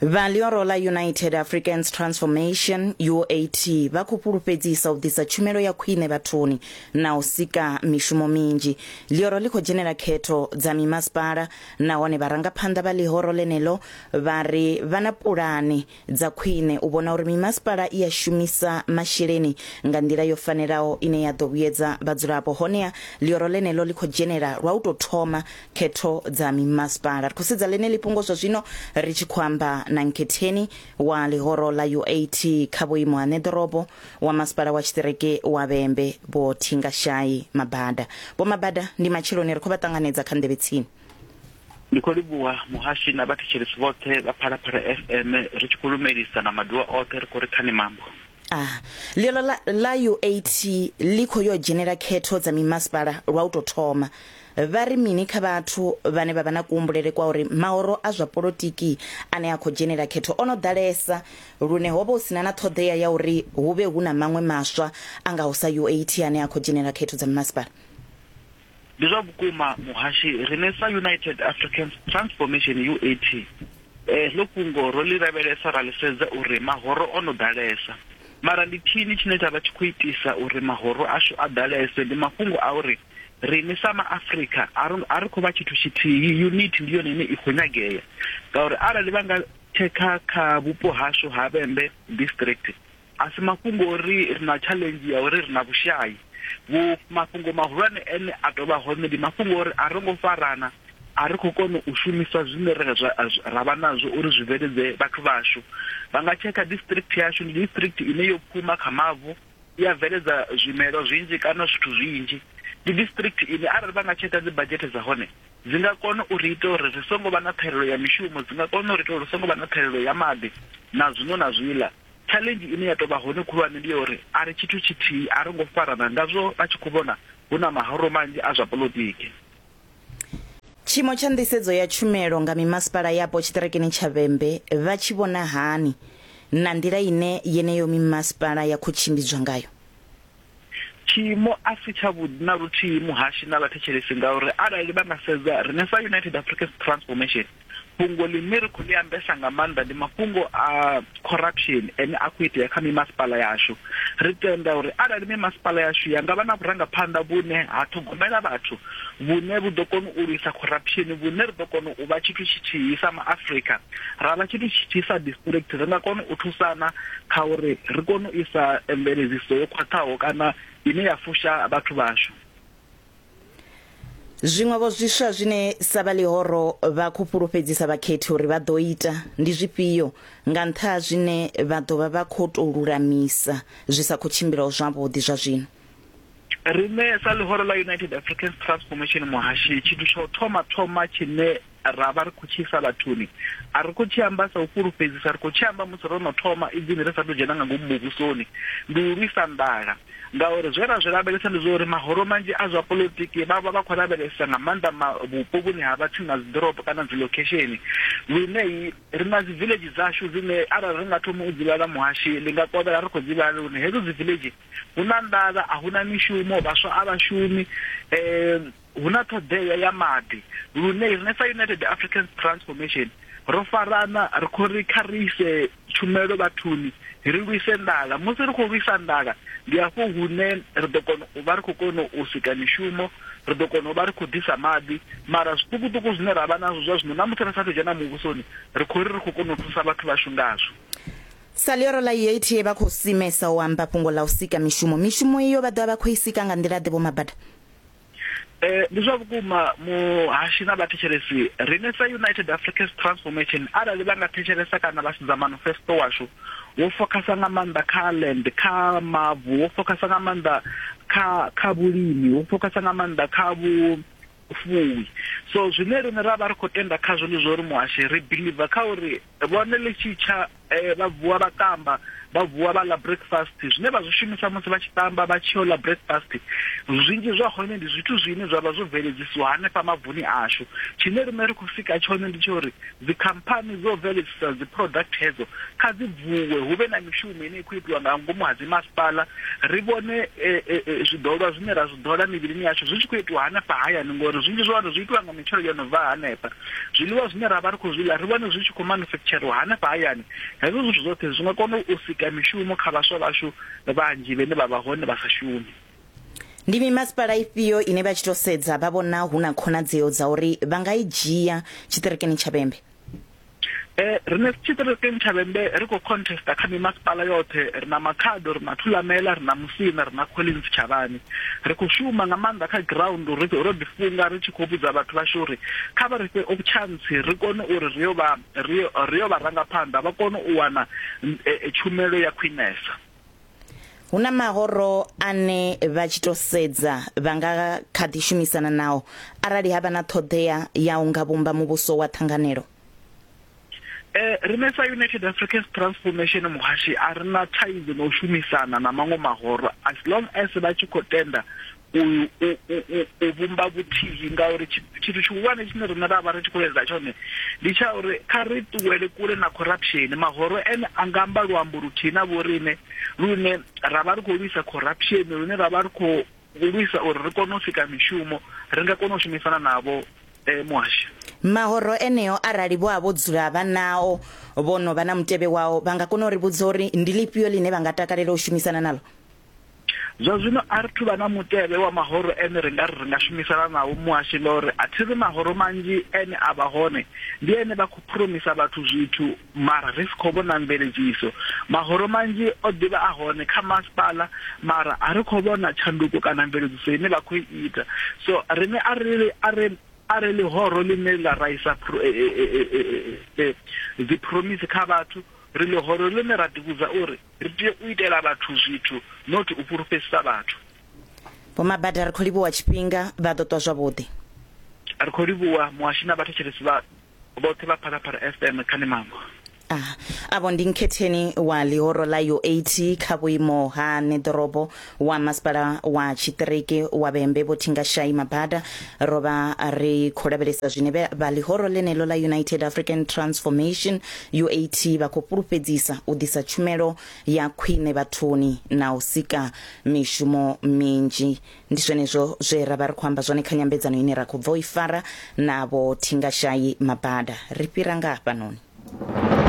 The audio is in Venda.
vhalioro la united africans transformation uat vha khou fhulufhedzisa u ḓisa tshumelo ya khwine vhathuni na u sika mishumo minzhi lioro ḽi khou dzhenela khetho dza mimasipala nahone vharangaphanḓa vha ḽihoro ḽeneḽo vha ri vha na pulane dza khwine u vhona uri mimasipala i a shumisa masheleni nga nḓila yo fanelaho ine ya ḓo vhuyedza vhadzulapo honeha ḽioro ḽeneḽo ḽi khou dzhenela lwa u tou thoma khetho dza mimasipala ri khou sedza ḽeneḽi fhungo zwa zwino ri tshi khou amba na nkhetheni wa ḽihoro ḽa uat kha vhuimo ha ṋeḓorobo wa masipala wa tshiṱireke wa vhembe vho thingashayi mabada vho mabada ndi matsheloni ri khou vha ṱanganedza kha nḓevhe tsini ndi khou livhuwa muhashi na vhathetshelesi vhoṱhe vha phalaphala fm ri tshi khou lumelisa na maduwa oṱhe ri khou ri khani mambo ah ḽiolo ḽa ḽa uat ḽi khou yo dzhenela khetho dza mimasipala lwa u tou thoma vha ri mini kha vhathu vhane vha vha na kuhumbulele kwa uri mahoro a zwa polotiki ane a khou dzhenela khetho o no ḓalesa lune ho vha hu sina na ṱhoḓea ya uri hu vhe hu na maṅwe maswa a ngaho sa uat ane a khou dzhenela khetho dza mimasipala Ndi zwa vhukuma muhashi, riṋe sa United Africans Transformation, UAT, heḽo fhungo ro ḽi lavhelesa ra ḽi sedza uri mahoro o no ḓalesa. Mara ndi tshini tshine tsha vha tshi khou itisa uri mahoro ashu a ḓalese? Ndi mafhungo a uri riṋe sa maAfrika a ri a ri khou vha tshithu tshithihi, unit ndi yone ine i khou nyagea ngauri arali vha nga tshekha kha vhupo hashu ha Vhembe District A si mafhungo o ri ri na tshaḽenzhi ya uri ri na vhushai. Vhu, mafhungo mahulwane ane a tou vha hone ndi mafhungo o ri a ro ngo farana, a ri khou kona u shumisa zwine ra, ra, ra vha nazwo uri zwi bveledze vhathu vhashu. Vha nga tshekha district yashu, ndi district ine yo pfuma kha mavu, ya bveledza zwimelwa zwinzhi kana zwithu zwinzhi. Ndi district ine arali vha nga tshekha dzibadzhethe dza hone, dzi nga kona u ri ita uri ri songo vha na ṱhahelelo ya mishumo, dzi nga kona u ri ita uri ri songo vha na ṱhahelelo ya maḓi, na zwiṅwe na zwiḽa. Tshaḽenzhi ine ya tou vha hone khulwane ndi ya uri a ri tshithu tshithihi, a ro ngo farana ngazwo vha tshi khou vhona hu na mahoro manzhi a zwa poḽotiki. Tshiimo tsha nḓisedzo ya tshumelo nga mimasipala yapo tshiṱirikini tsha Vhembe vha tshi vhona hani na nḓila ine yeneyo mimasipala ya khou tshimbidzwa ngayo? Tshiimo a si tshavhuḓi na luthihi muhashi na vhathetshelesi ngauri arali vha nga sedza riṋe sa United Africans Transformation, fhungo ḽine ri khou ḽi ambesa nga maanḓa ndi mafhungo a corruption ane a khou itea kha mimasipala yashu. Ri tenda uri arali mimasipala yashu ya nga vha na vhurangaphanḓa vhune ha ṱhogomela vhathu vhune vhu ḓo kona u lwisa corruption vhune ri ḓo kona u vha tshithu tshithihi sa maafrika ra vha tshithu tshithihi sa district ri nga kona u thusana kha uri ri kone u isa mveledziso yo khwaṱhaho kana ine ya fusha vhathu vhashu Zwiṅwevho zwiswa zwine sa vha ḽihoro vha khou fhulufhedzisa vhakhethi uri vha ḓo ita ndi zwifhio nga nṱha ha zwine vha ḓo vha vha khou tou lulamisa zwi sa khou tshimbilaho zwavhuḓi zwa zwino? rine sa ḽihoro ḽa united africans transformation muhashi tshithu tsha u thoma thoma tshine ra vha ri khou tshi isa vhathuni a ri khou tshi amba sa u fhulufhedzisa ri khou tshi amba musi ro no thoma idzini ri sa tou dzhena nga ngomu muvhusoni ndi u lwisa nḓala ngauri zwe ra zwi lavhelesa ndi zwa uri mahoro manzhi a zwa politiki vha vha vha khou lavhelesa nga maanḓa vhupo vhune ha vha tsini na dzi ḓorobo kana dzi location lune ri na dzi village dzashu dzine arali ri nga thoma u dzi vhala muhashi ndi nga kovhela ri khou dzi vhala lune hedzo dzi village hu na nḓala, a hu na mishumo, vhaswa a vha shumi, hu na ṱhoḓea ya maḓi. Lune riṋe sa United Africans Transformation ro farana ri khou ri kha ri ise tshumelo vhathuni, ri lwise nḓala. Musi ri khou lwisa nḓala, ndi hafho hune ri ḓo kona u vha ri khou kona u sika mishumo, ri ḓo kona u vha ri khou ḓisa maḓi. Mara zwiṱukuṱuku zwine ra vha nazwo zwa zwino, na musi ri sa a thu u dzhena muvhusoni, ri khou ri ri khou kona u thusa vhathu vhashu ngazwo. Sa ḽioro ḽa UATA vha khou simesa u amba fhungo ḽa u sika mishumo. Mishumo iyo vha ḓovha vha khou i sika nga nḓila-ḓe, Vho Mabada? Ee, ndi zwa vhukuma muhashi na vhathetshelesi. Riṋe sa United Africans Transformation, arali vha nga thetshelesa kana vha sedza manifesto washu, wo fokhasa nga maanḓa kha land, kha mavu, wo fokhasa nga maanḓa kha kha vhulimi, wo fokhasa nga maanḓa kha vhu fuwi. So zwine riṋe ra vha ri khou tenda khazwo ndi zwa uri muhashi ri believer kha uri Vhone ḽi tshi tsha, vha vuwa vha ṱamba, vha vuwa vha ḽa breakfast. Zwine vha zwi shumisa musi vha tshi ṱamba vha tshi yo ḽa breakfast, zwinzhi zwa hone ndi zwithu zwine zwa vha zwo bveledzisiwa hanefha mavuni ashu. Tshine riṋe ra khou sika tshone ndi tsha uri dzikhamphani dzo bveledzisa dzi product hedzo kha dzi vuwe, hu vhe na mishumo ine ya khou itiwa nga ngomu ha dzimasipala, ri vhone zwiḓolwa zwine ra zwi ḓola mivhilini yashu zwi tshi khou itiwa hanefha hayani, ngori zwinzhi zwa hone zwi itiwa nga mitshelo yo no bva hanefha. zwiḽiwa zwine ra vha ri khou zwi ḽa ri vhone zwi tshi khou manufekitsheriwa hanefha hayani hezwo zwithu zwoṱhe zwi nga kona u sika mishumo kha vhaswa vhashu vhanzhi vhene vha vha hone vha sa shumi Ndi mimasipala ifhio ine vha tshi tou sedza vha vhona hu na khonadzeo dza uri vha nga i dzhia tshiṱirikini tsha Vhembe? Eh, rine tshiṱirikini tsha Vhembe ri khou contesta kha mimasipala yoṱhe, ri na Makhado, ri na Thulamela, ri na Musina, ri na Collins Tshavhani. ri khou shuma nga maanḓa kha ground ro ḓi funga ri tshi khou vhudza vhathu vhashu uri kha vha ri fhe opchantsi ri kone uri ri yo vha ri yo vha ranga phanḓa vha kone u wana eh, eh, tshumelo ya khwinesa hu na mahoro ane vha tshi to sedza vha nga kha ḓi shumisana nao arali ha vha na ṱhoḓea ya u nga vhumba muvhuso wa ṱhanganelo Eh, rine sa united africans transformation muhashi a ri na thaidzo na u shumisana na maṅwe mahoro as long as vha tshi khou tenda u u- u- u- u vhumba vhuthihi ngauri tshi- tshithu tshihulwane tshine riṋe ra vha ri tshi khou leleza tshone ndi tsha uri kha ri ṱuwele kule na corruption mahoro ene a nga amba luambo luthihi na vhoriṋe lune ra vha ri khou lwisa corruption lune ra vha ri khou U lwisa uri ri kone u sika mishumo, ri nga kona u shumisana navho, Muhasho. Mahoro eneo arali vho a vho dzula vha nao, vho no vha na mutevhe wao, vha nga kona u ri vhudza uri ndi ḽifhio ḽine vha nga takalela u shumisana naḽo? Zwa zwino a ri thu vha na mutevhe wa mahoro ene ri nga ri ri nga shumisana nao, Muhasho, ngauri a thi ri mahoro manzhi ene a vha hone ndi ene vha khou phuromisa vhathu zwithu. Mara ri si khou vhona mveledziso. Mahoro manzhi o ḓi vha a hone kha masipala, mara a ri khou vhona tshanduko kana mveledziso ine vha khou i ita. So, riṋe a ri a ri a ri ḽihoro ḽine ḽa ra isa dziphromise kha vhathu, ri ḽihoro ḽine ra ḓivhudza uri ri tea u itela vhathu zwithu not u fhulufhedzisa vhathu. Vho Mabada, Ri khou livhuwa tshifhinga, vha ḓo ṱwa zwavhuḓi. Ri khou livhuwa Muhasho na vhathetshelesi vha boṱhe vha phalaphala fm kha ni mango Ah, avho ndi nkhetheni wa ḽihoro ḽa u8 kha vhuimo ha neḓorobo wa masipala wa tshiṱiriki wa vhembe vho thingashayi mabada ro vha ri khou lavhelesa zwine vhe- vha ḽihoro ḽeneḽo ḽa united african transformation u8 vha khou fhulufhedzisa u ḓisa tshumelo ya khwine vhathuni na u sika mishumo minzhi Ndi zwenezwo zwe ra vha ri khou amba zwone kha nyambedzano ine ra khou bva u i fara na vhothingashayi mabada. Ri fhira nga hafhanoni.